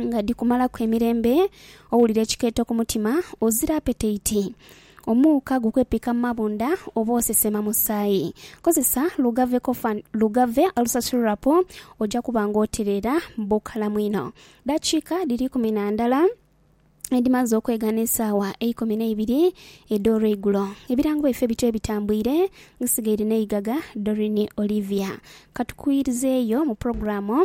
nga dhikumalaku emirembe, owulira ekikeeto ku mutima, ozira apeteiti, omuuka gukwepika mu mabunda oba osesema musaayi. Kozesa Lugave Cough and Lugave Ulcer Syrup oja kuba nga otereera bukalamu inho. Daakiika dhiri ikumi na ndala edhimaze okwegana esaawa eikumi n'eibiri edh'olweigulo. Ebirango byaife bityo ebitambwire, nsigaire n'eigaga Doreen Olivia. Ka tukuwirizeeyo mu pulogulaamu.